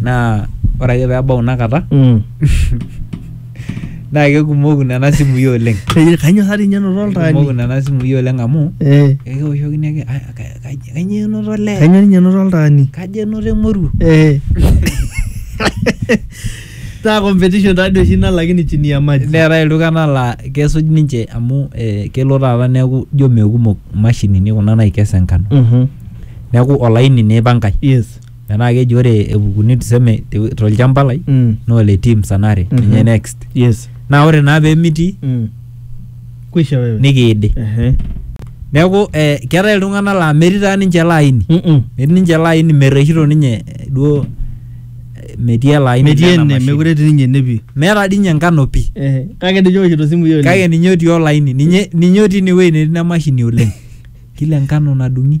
naa ore ake peebau ina kata naa kekumoku nena simui oleng Kainyoo sa dii ninye enoto oltaani? kekumoku nena simui oleng amu Eh, ekioshokini ake "Ah, ka- ka- kainyoo enoto olee kainyoo ninye enoto oltaani? kaji enoto emoruo Eh. Taa competition taa dii oshi ina lakini chini ya maji. neetae iltung'anak laa kesuj ninche amu eh, kelo taata neeku ijo mekumok imashinini kuna naikes enkano Mhm. neeku olaini naa ipankae Yes. metaa keji ore epukuni tuseme te- tolchamba lai Mm. naa ole teams anare Mhm. ninye next yes naa ore naa pemitii mm. kwisha wewe nikiidi Ehe. neeku eh, keetae iltung'anak laa metii taa ninche ele aini Mm-mm. metii ninche ele aini merreshito ninye eh, duo eh, metii ele aini metii lena ene mashini. mekure etii ninye ene pii meeta dii ninye enkano pii Ehe. kake ninye oshito simu yio kake ninye otii olaini ninye ninye otii inewueji netii ina mashini oleng kila enkano nadung'i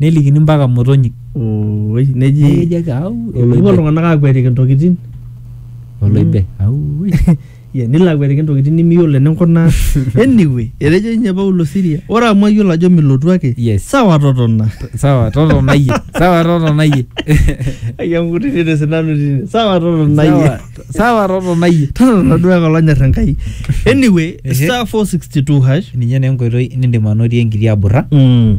nelikini mpaka motonyik. Ooi neji Neji ake au. Oloibe. epuo iltung'anak aakwetiki intokitin oloibe. Au. Yeah, nilo akwetiki intokitin nimiyiolo eninkunaa anyway etejo ninye Paulo Siria ore amu ayiolo ajo milotu ake Yes. sawa totona Sawa totona iyie. Sawa totona iyie. ayanguti te sinanu tine sawa totona Sawa- iyie Sawa totona iyie. totona duo ake olonyor Enkai anyway Ehe. star 462 hash Ninye naa enkoitoi nindim anotie enkiti aburra. Mm.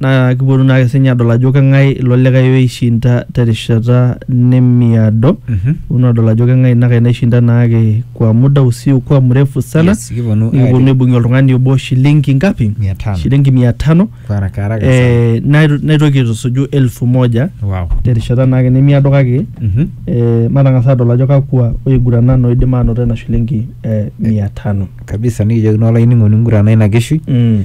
naa kipuonu naake sinye adol ajo keng'ae ilo likae oishinda terishata nemiado Mhm. kipuonu adol ajo keng'ae ina kae naishinda naake kwa muda usiokuwa mrefu sana Yes, kipuonu nikipuonu aitip- aibung'ie oltung'ani obo shilingi ngapi Mia tano. shilingi mia tano Kwa haraka haraka sana. eh, nai- naitoki aitusuju elfu moja Wow. terishata naake nemiado kake Mhm. eh, matang'as adol ajo kakwa oiguranan oidim aanoto ena shilingi eh, mia tano kabisa nikijokini olainining'oni ngurana ina kishui mm.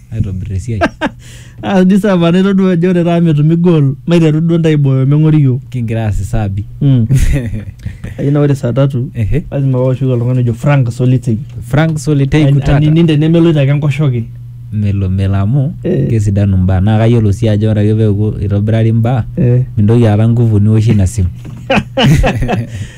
aitobir esiai. Ah, di saa paa naitodua ajo ore taata metumi goal maiteru duo ntae aibooyo meng'ori iyiook. Kingira aas isaabi. Mm. Ajo naa ore saa tatu Ehe. lazima paoshoki oltung'ani ojo Frank Solitei. Frank Solitei Ani- Kutata. Anining tenemeloito ake enkoshoke. Melo melo amu Eh. kesidanu mbaa naa kayiolo sii ajo ore ake peeku itobirari mbaa Eh. mintoki aata nguvu niwoshie ina simu.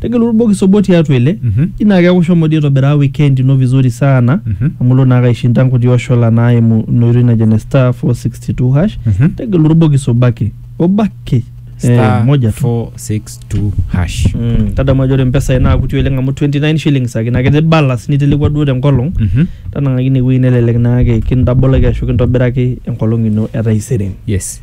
tegelu orbokis obo tiatua ele Mhm. ji naa keeku shomo dii aitobiraa weekend ino vizuri sana Mhm. amu ilo naake aishinda nkuti oshola naimu ina oitoi najo ene star 462 hash Mhm. tegelu orbokis obo ake obo ake Star eh, moja tu 462 hash. Mm, tadamu ajo ore mpesai naa kuti oleng amu 29 shillings ake naa ketii balance nitelekua duo tenkolong Mhm. tanang'aki inewueji nelelek naake kintabolaki ashu kintobiraki enkolong ino etaisere Yes.